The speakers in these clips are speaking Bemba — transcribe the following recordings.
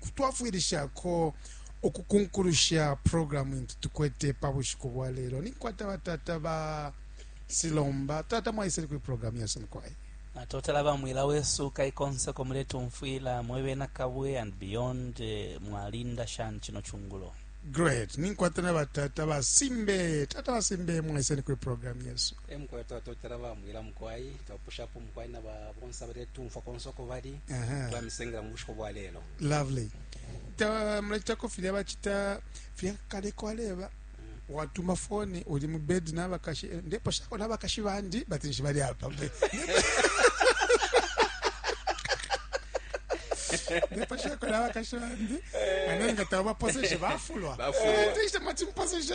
kutwafwilishako ukukunkulusha programu intu tukwete pa bushiku bwa lelo ninkwata batata ba silomba tata mwaisele kuli programu yesu mukwai natotela bamwila wesu kaikonseko muletumfwila mwebena kabwe and beyond eh, mwalinda shani chino chungulo great ninkwata na batata basimbe tata basimbe mwaiseni kuli programu yesu E mukwai twatotela ba mwila mukwai twapushapo mukwai na ba bonse abaletumfwa konse uko bali Aha. twamisengela mu bushiku bwa lelo lovely Ta- mulacitako filya bacita filya kale kwaleba watuma foni uli mu bedi n'abakashi eh, ndeposhako n'abakashi bandi bati nshi bali apa mbe ndeposhako n'abakashi bandi ane nga tabaposeshe bafulwa Bafulwa. Eh, tishe mati mposeshe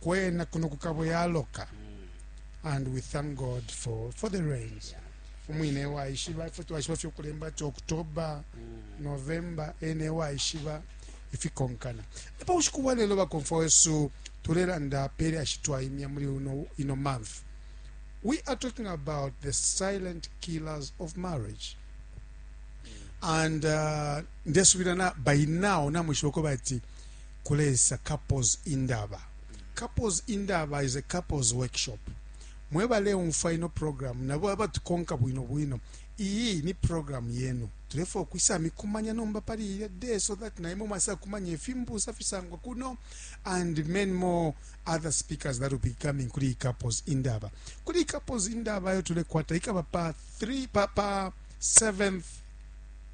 kwena kuno kukabo yaloka and we thank god for, for the rains umwine waishiba ifwe twaishiba fye ukulemba ati october november ene waishiba ifikonkana epa bushiku bwa lelo bakomfwa wesu tulelanda pele ashitwaimya muli uno ino month we are talking about the silent killers of marriage and uh, ndesubila na by now namwishiba ko bati kulesa couples indaba. Couples indaba is a couples workshop. Mwebaleumfwa ino program nabo abatukonka bwino bwino, iyi ni program yenu. Tulefwaya ukwisa mikumanya nomba pali ilya day so that naimwe mwasa kumanya ifimbusa fisangwa kuno and many more other speakers that will be coming kuli iyi couples indaba. Kuli iyi couples indaba yo tulekwata ikaba pa 3 pa pa 7th